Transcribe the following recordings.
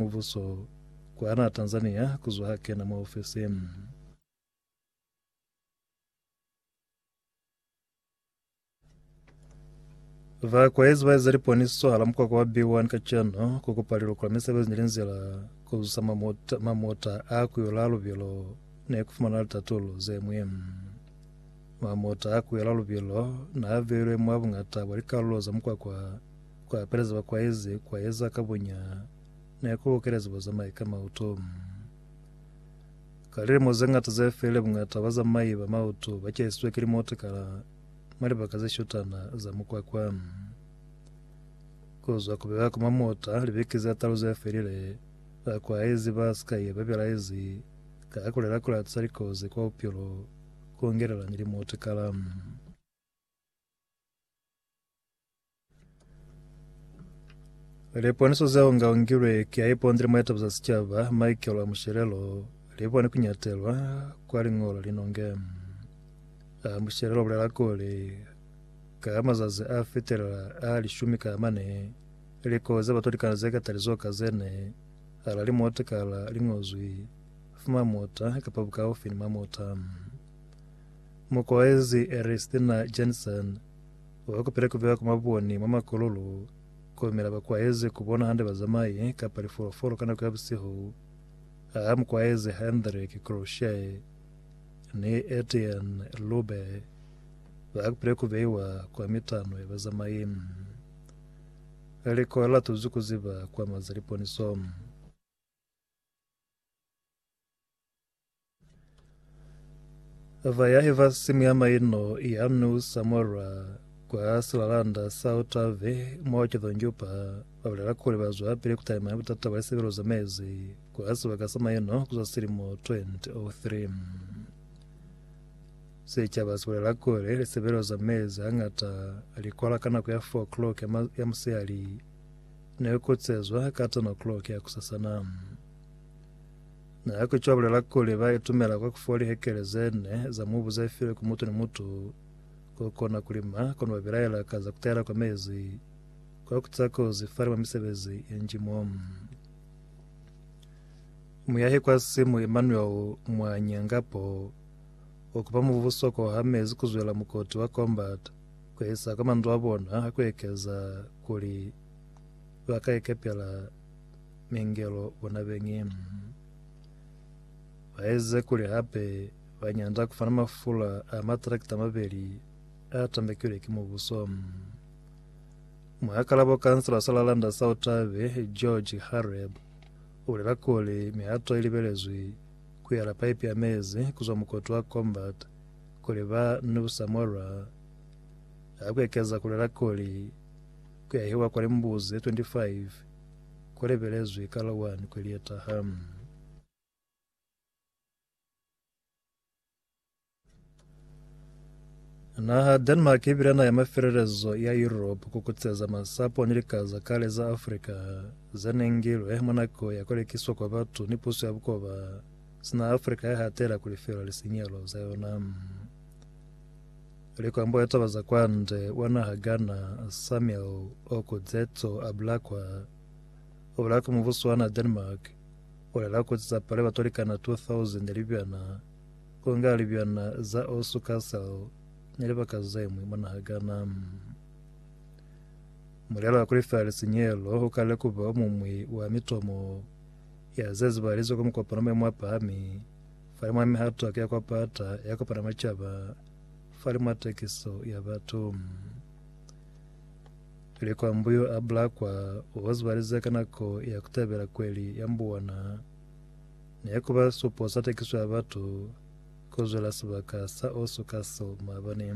Mubuso kwahana Tanzania kuzwa ha kena mwa ofisi. Vakwaezi ba eza liponiso hala mukwakwa wa B1 kacenu ku kupa liloko la misebezi ni linzila ku zusa mamota, mamota a kuyula lubilo ne ku fumana litatulo ze mwe. Mamota a kuyula lubilo na a beilwe mwa bungata bwa likalulo za mukwakwa Ku apeleza ba kwaezi kwa eza ka bonya ne ku lukelezi bazamai ka mauto. Ka lilimo ze ñata ze felile bungata ba bazamai ba mauto ba cahisizwe ki limotikala mwa libaka ze shutana za mukwakwa. Ku zwa ku bewa kwa mamota libeke ze talu ze felile, ba kwaezi ba si kai ba belaezi ka ha ku lela ku latisa likozi kwa bupilo ku ngelela ni limotikala. Liponiso zeo nga ungilwe kia iponzile muetepo za sicaba Michael wa Mushelelo libone kunyatelwa kwa lingolo linonge. A Mushelelo bulela kuli ka mazazi a fitelela a lishumi ka mane likozi za batolikana ze katali zoka zene ala limota kala lingozwi fuma mota kapa bukaufi ni mamota. Mukoezi Eristina Jensen Ba ba kupile ku bewa kwa maboni mwa makololo koyemela ba kwaeze ku bona hande bazamai kapa lifolofolo ka nako ya busihu. Ha mu kwaeze Hendrik Kroshae ni Etienne Lube ba kupile ku beiwa kwa mitano ya bazamai. Liko la tuzwi ku ziba kwa maza liponiso. Va ya eva simu ya maino ya mme u sa morwa kwa silalanda sa otave mo cethonjupa ba bolela kuli ba zwa pele ku taima butata bwa sebelo za mezi kwa sebaka sa maino ku za silimo 2003 setšhaba se bolela kuli lisebelo za mezi hangata li kwala ka nako ya 4 o'clock ya musihali ne kotsezwa ka 10 o'clock ya kusasana Na ya ku cwa bulela kuli ba itumela kwa ku fuwa lihekele ze ne za mubu ze filwe ku mutu ni mutu ko kona ku lima, kono ba bilaela ka za ku tahela kwa mezi kwa ku tiza kozi fani mwa misebezi ye nji mo. Muyahi kwa simu Emmanuel Mwanyangapo o kupa mubuso ko ha mezi ku zwela mukoti wa Combat ku isa kwa mandu a bona ha ku ekeza kuli ba ka ikepela mingelo bona beñi baeze kuli hape ba nyanda kufana mafula a matrakta mabeli a tambekilwe ki mubuso. Muhakalabo kansela sa Lalanda sa Otabe, George Hareb, o bolela kuli mihato e libelezwi ku yala paipi ya mezi kuzwa mukoto wa Combat kuli ba New Samora ha ku ekeza kulela kuli ku yahiwa kwa limbuzi 25 ku lebelezwi ka la 1 Kweleta ha Naha Denmark i bile naha ya mafelelezo ya Europe ku kutseza masapo ni lika za kale za Afrika ze ne ngilwe mwa nako ya ku lekiswa kwa batu ni puso ya bukoba sina Afrika ya hatela ku lifela lisinyalo za yona. Likwambo ya taba za kwande wa naha Ghana Samuel Okudzeto a bula kwa o bula kwa mubuso wa naha Denmark o lela kuli za pale batu likana 2000 ya libyana ku nga libyana za Osu Castle ni libaka zemwi mwa naha Ghana. Mulelo wa kulifela lisinyelo ukalile kuba omumwi wa mitomo ya zezibahalizwe kwa mukopano wa maemo apahami Fali mwa mihato ki ya kwa pata ya kopana mwa caba, fali mwa takiso ya batu. Tuli kwa mbu yo a bula kwa o zibaliza ka nako ya kutabela kweli ya mbu ona. Ne kuba supo sa takiso ya batu ku zwela sibaka sa o suka so maabani.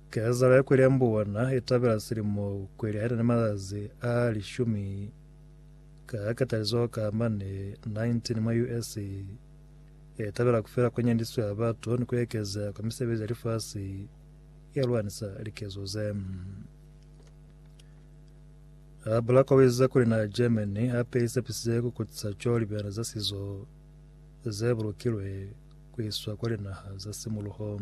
Kezalo ya kweli ya mbu ona itabela silimo kweli haina ni mazazi a lishumi Ka katalizo ka mane 19 mwa US. e tabela kufela ku nyandiswa ya batu ni ku ekeza kwa misebezi ya lifasi ya lwanisa likezo ze. A bula kowiza kuli na Germany hape isepisize ku kutisa co libena za sizo ze bulukilwe ku iswa kwa linaha za simuluho.